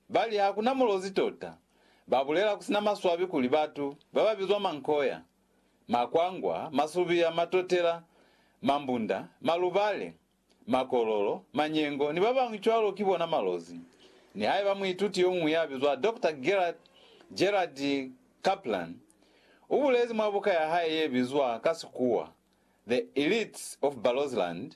Ba li, Ha ku na mulozi tota. Ba bulela ku si na maswabi kuli batu ba ba bizwa mankoya, makwangwa, masubiya, matotela, mambunda, malubale, makololo, manyengo, ni ba bañwi cwalo ki bona malozi. Nihaiba muituti yo muñwi ya bizwa Doctor Gerhard, Gerhard Kaplan, u bulezi mwa buka ya hae ye bizwa ka Sikuwa, The Elites of Barotseland,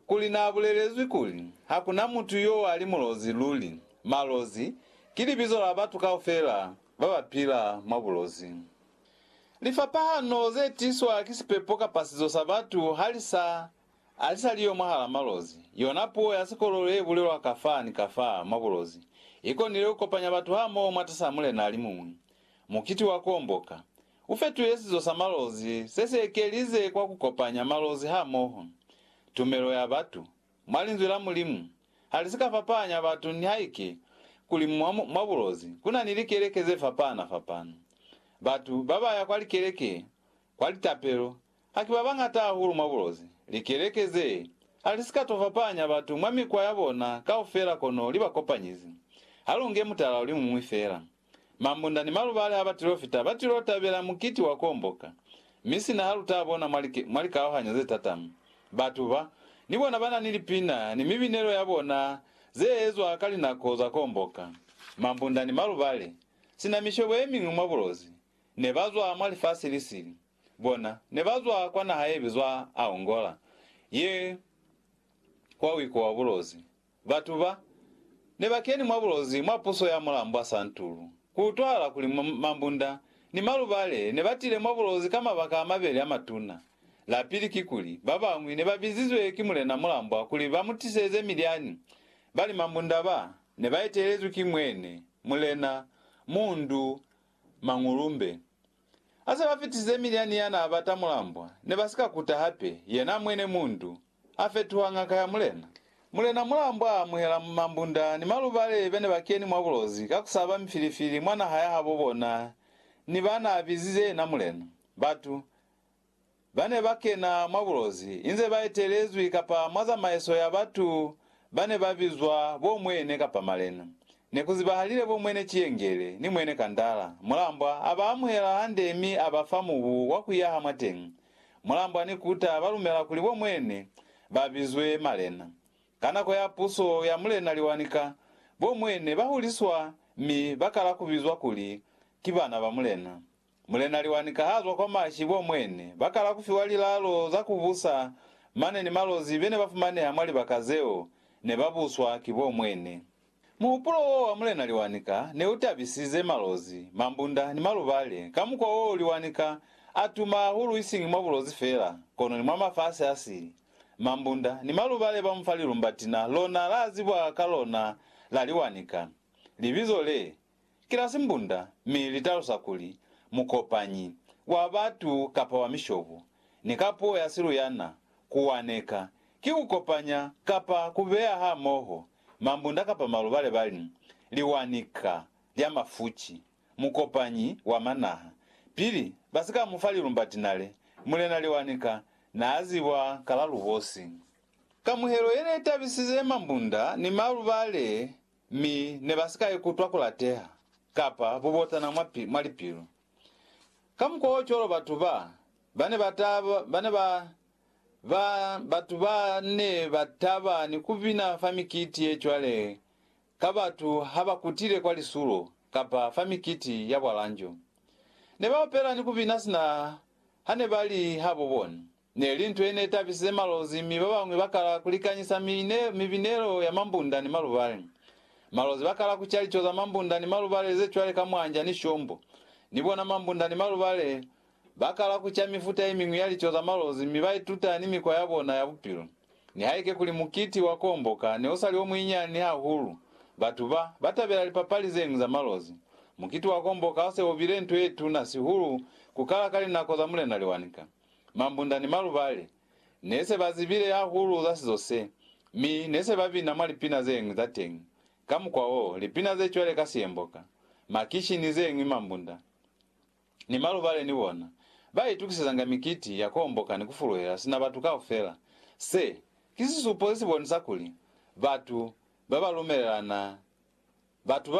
kuli naabulelezwi kuli, Hakuna mutu yo ali mulozi luli. Malozi ki libizo la batu kaufela babapila mwa bulozi. Lifapahano zetiswa ki sipepo kapa sizo sa batu halisa alisaliyo mwahala malozi. Yona puo ya sikololo yebulelwa kafa ni kafa mwa bulozi ikonile kukopanya batu hamoho mwatas'a mulena alimuñwi, mukiti wa kuomboka, U fetile sizo sa malozi se si ekelize kwa ku kopanya malozi hamoho. Tumelo ya batu mwa Linzwi la Mulimu ha li si ka fapahanya batu nihaike kuli mwa, mwa bulozi ku na ni likeleke ze fapahana-fapahana. Batu ba ba ya kwa likeleke kwa litapelo ha ki ba bañata hahulu mwa bulozi. Likeleke ze ha li si ka to fapahanya batu mwa mikwa ya bona kaufela kono li ba kopanyize. Ha lu nge mutala o li muñwi fela. Mambunda ni malubali a batilofita ba tilo tabela mukiti wa kuomboka, mi sina ha lu ta bona mwa like, mwa likaohanyo ze tatama. Batu ba, ni bona ba na ni lipina ni mibinelo ya bona ze ezwa ka linako za kuomboka. Mambunda ni malubali, sina mishobo ye miñwi mwa bulozi, ne ba zwa mwa lifasi li sili. Bona, ne ba zwa kwa naha ye bizwa Aongola, ye kwa wiko wa bulozi. Batu ba, ne ba keni mwa bulozi mwa puso ya mulambwa Santuru. Ku utwahala kuli Mambunda ni Malubale ne ba tile mwa bulozi ka mabaka a mabeli a matuna. La pili kikuli, ba bañwi ne ba bizizwe ki mulena mulambwa kuli ba mu tiseze milyani, bali Mambunda ba, ne ba etelezwi ki mwene, Mulena, Mundu, Mangulumbe. Ha se ba fitisize milyani ya n'a bata mulambwa, ne ba si ka kuta hape, yena mwene Mundu, A fetuha ngaka ya mulena. Mulena Mulambo a amuhela mambunda ni malubale bene ba keni mwa bulozi ka kusaba mifilifili mwa naha ya habo bona ni ba na bizize yena mulena. Batu ba ne ba kena mwa bulozi inze ba etelezwi kapa mwa zamaiso ya batu ba ne ba bizwa bo Mwene kapa Malena. Ne ku zibahalile bo Mwene Ciyengele ni Mwene Kandala. Mulambwa a ba amuhela hande mi a ba fa mubu wa ku yaha mwateñi. Mulambo ani kuta balumela kuli bo mwene ba bizwe malena. Ka nako ya puso ya Mulena Liwanika, bo mwene ba huliswa mi ba kala ku bizwa kuli ki bana ba mulena. Mulena Liwanika ha zwa kwa mashi bo mwene ba kala ku fiwa lilalo za ku busa mane ni malozi bene ba fumaneha mwa libaka zeo ne ba buswa ki bo mwene. Muhupulo w'o wa Mulena Liwanika ne u tabisize Malozi, Mambunda ni Malubale ka mukwa w'o Liwanika a tuma hahulu isiñi mwa Bulozi fela, kono ni mwa mafasi a sili. Mambunda ni Malubale ba mu fa lilumbatina lona la zibwa ka lona la Liwanika. Libizo le, ki la simbunda mi li talusa kuli mukopanyi wa batu kapa wa mishobo, ni ka puo ya siluyana, ku waneka, ki ku kopanya kapa ku beya hamoho mambunda kapa maluba le ba li, liwanika lya mafuci, mukopanyi wa manaha. Pili ba si ka mu fa lilumba tinale, Mulena Liwanika n'a zibwa ka la lubosi. Kamuhelo ye ne tabisize mambunda ni maluba le Mi ne ba si ka ikutwa ku lateha kapa bubotana mwa, mwa lipilu. Kamukwaocwalo batu ba, ba ne ba ta, ba ne ba, ba, batu ba ne ba taba ni ku bina fa mikiti ye cwale ka batu ha ba kutile kwa lisulo kapa fa mikiti ya bwalanjo. Ne ba opela ni ku bina sina ha ne ba li habo bona. Ne li nto ye ne tabisize Malozi mi ba bañwi ba kala ku likanyisa mibinelo ya mambunda ni malubale. Malozi ba kala ku ca lico za mambunda ni malubale ze cwale ka mwanja ni shombo. Ni bona mambunda ni malubale ba kala ku ca mifuta ye miñwi ya lico za Malozi mi ba ituta ni mikwa ya bona ya bupilo. Nihaike kuli mukiti wa Kuomboka ne u sa li o muinyani hahulu, batu ba ba tabela lipapali ze ñwi za Malozi. Mukiti wa Kuomboka u se u bile nto ye tuna sihulu ku kala ka linako za Mulena Liwanika. Mambunda ni Malubale ne se ba zibile hahulu za sizo se, mi ne se ba bina mwa lipina ze ñwi za teñi. Ka mukwa wo, lipina ze cwale ka Siyemboka, Makishi ni ze ñwi Mambunda ni Malubale ni bona ba itukisezanga mikiti ya ku homboka ni ku fuluhela sina batu kaufela. Se, ki sisupo se si bonisa kuli batu ba ba lumelelana. Batu ba.